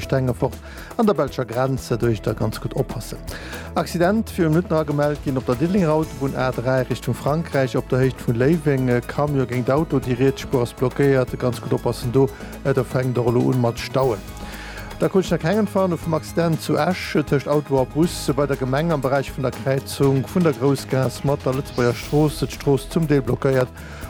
Stengefort an der belscher Grenz, do iech da ganz gutt oppassen. Accident viru Minutten agemellt ginn op der Diddelenger Autobunn A3 Richtung Frankräich op der Héicht vun Léiweng. E Camion géint Auto, déi riets Spuer ass blockéiert, ganz gutt oppassen do, et fänkt och elo un mat Stauen. Da krut ech nach keng Entwarnung vum Accident zu Esch tëscht Auto a Bus bei der Gemeng am Beräich vun der Kräizung vun der Groussgaass mat der Lëtzebuerger Strooss, d'Strooss zum Deel blockéiert,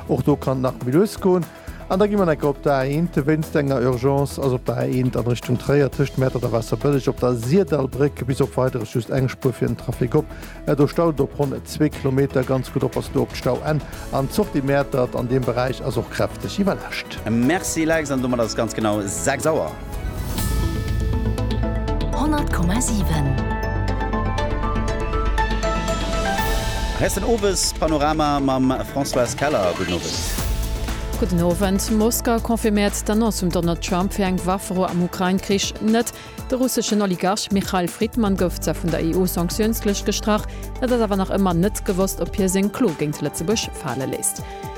och do kann nach méi lues goen. An da gi mer necker op der A1, wéinst enger Urgence ass op der A1 an Richtung Tréier tëscht Mäertert a Waasserbëlleg op der Sirdallbréck bis op Weideres just eng Spuer fir den Trafic op. Do staut et op ronn zwee Kilometer. Ganz gutt oppassen do op d'Stauenn an d'Sortie Mäertert an deem Beräich ass och kräfteg iwwerlascht. Merci Lex, an domat ass et ganz genau 6 Auer. 100,7. Hei ass den Owespanorama mam Françoise Keller. Gudden Owend. Gudden Owend. Moskau confirméiert d'Annonce vum Donald Trump fir eng Waffero am Ukrain-Krich net. De russeschen Oligarch Michail Fridman gouf zwar vun der EU-Sanktiounslëscht gestrach, et ass awer nach ëmmer net gewosst, ob hie seng Klo géint Lëtzebuerg fale léisst.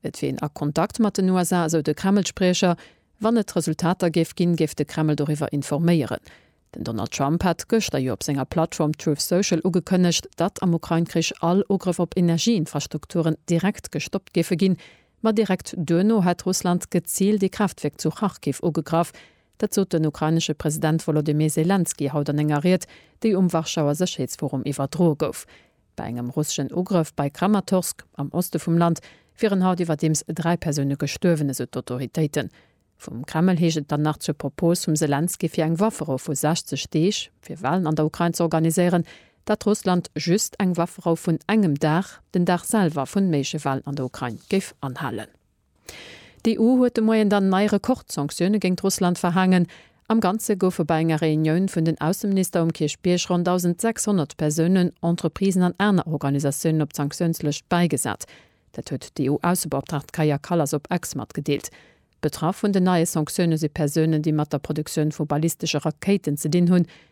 Et wier een a Kontakt mat den USA, esou de Kreml-Spriecher. Wann et Resultater géif ginn, géif de Kreml doriwwer informéieren. Den Donald Trump hat gëschter jo op senger Plattform Truth Social ugekënnegt, datt am Ukrain-Krich all Ugrëff op Energieinfrastrukturen direkt gestoppt géife ginn. Ma direkt duerno hätt Russland geziilt ee Kraaftwierk zu Kharkiv ugegraff. Dat sot den ukrainesche President Wolodymyr Selenskyj haut an enger Ried, déi um Warschauer Sécherheetsforum iwwerdroe gouf. Bei engem russeschen Ugrëff bei Kramatorsk am Oste vum Land wieren haut iwwerdeems dräi Persoune gestuerwen, esou d'Autoritéiten. Vum Kreml heescht et dann nach zur Propos vum Selenskyj fir eng Wafferou vu 60 Deeg, fir Walen an der Ukrain ze organiséieren, dat Russland just eng Wafferou vun engem Dag, den Dag selwer vun méigleche Walen an der Ukrain, géif anhalen. D'EU huet de Moien dann nei Rekordsanktioune géingt Russland verhaangen. Am Ganze goufe bei enger Reunioun vun den Ausseminister um Kierchbierg ronn 1.600 Persounen, Entreprisen an aner Organisatiounen op d'Sanktiounslëscht bäigesat. Dat huet d'EU-Aussebeoptraagt Kaja Kallas op X matgedeelt. Betraff vun den neie Sanktioune si Persounen, déi mat der Produktioun vu ballistesche Rakéiten ze dinn hunn.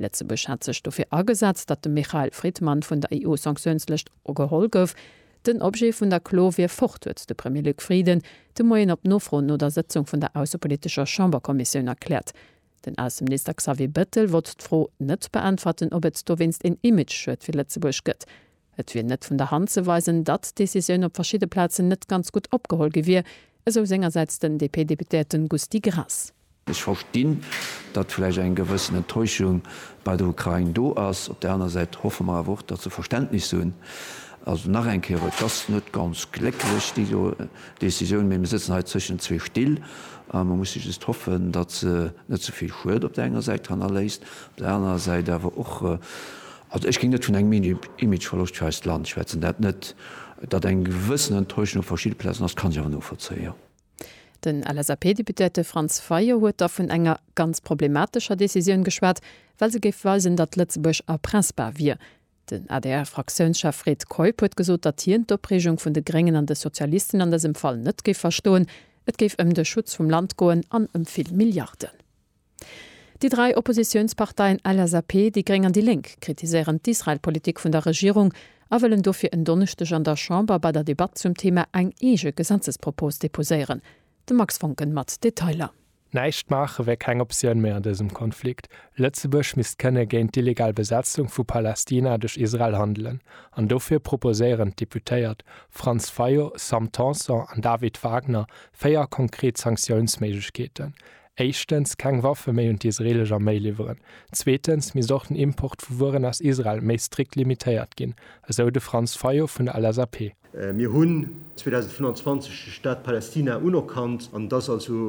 Lëtzebuerg hat sech dofir agesat, datt de Michael Fridman vun der EU-Sanktiounslëscht geholl gouf. Den Objet vun der Klo wier fort, huet de Premier Luc Frieden de Moien op Nofro no der Sëtzung vun der aussepolitescher Chamberkommissioun erkläert. Den Ausseminister Xavier Bettel wollt d'Fro net beäntwerten, ob et dowéinst een Image-Schued fir Lëtzebuerg gëtt. Et wier net vun der Hand ze weisen, datt d'Decisioun op verschidde Plazen net ganz gutt opgeholl gi wier, esou sengersäits den DP-Deputéierten Gusty Graas. Ech verstinn, datt vläicht eng gewëssen Enttäuschung bei der Ukrain do ass. Op där aner Säit hoffe mer awer och, datt se Verständnis hunn. Also nach eng Kéier, et ass net ganz glécklech déi do Decisioun, mee mir sëtzen hei zwëschen zwee Still a mer musse just hoffen, datt se net ze vill Schued op där enger Säit hannerléisst, op där anerer Säit awer och Also ech géing net vun engem Imageverloscht fir eist Land schwätzen. Dat net. Datt eng gewëssen Enttäuschung op verschidde Plazen ass, kann ech awer novollzéien, jo. Den LSAP-Deputéierte Franz Fayot huet da vun enger ganz problematescher Decisioun geschwat, well se géif weisen, datt Lëtzebuerg erpressbar wier. Den ADR-Fraktiounschef Fred Keup huet gesot, datt hien d'Opreegung vun de Gréngen an de Sozialisten an dësem Fall net géif verstoen. Et géif ëm de Schutz vum Land goen an ëm vill Milliarden. Déi dräi Oppositiounsparteien LSAP, déi gréng an déi Lénk kritiséieren d'Israel-Politik vun der Regierung a wëllen dofir en Donneschdeg an der Chamber bei der Debatt zum Thema eng eege Gesetzespropos deposéieren. De Max Voncken mat Detailer. Näischt maache wär keng Optioun méi an dësem Konflikt. Lëtzebuerg misst kënne géint d'illegal Besetzung vu Palästina duerch Israel handelen an dofir proposéieren d'Deputéiert Franz Fayot, Sam Tanson an David Wagner véier konkret Sanktiounsméiglechkeeten, éischtens keng Waffe méi un d'isreelesch Arméi liwweren, zweetens misst och den Import vu Wueren aus Israel méi strikt limitéiert ginn, esou de Franz Fayot vun der LSAP. Mir hunn 2025 de Staat Palästina unerkannt an et ass also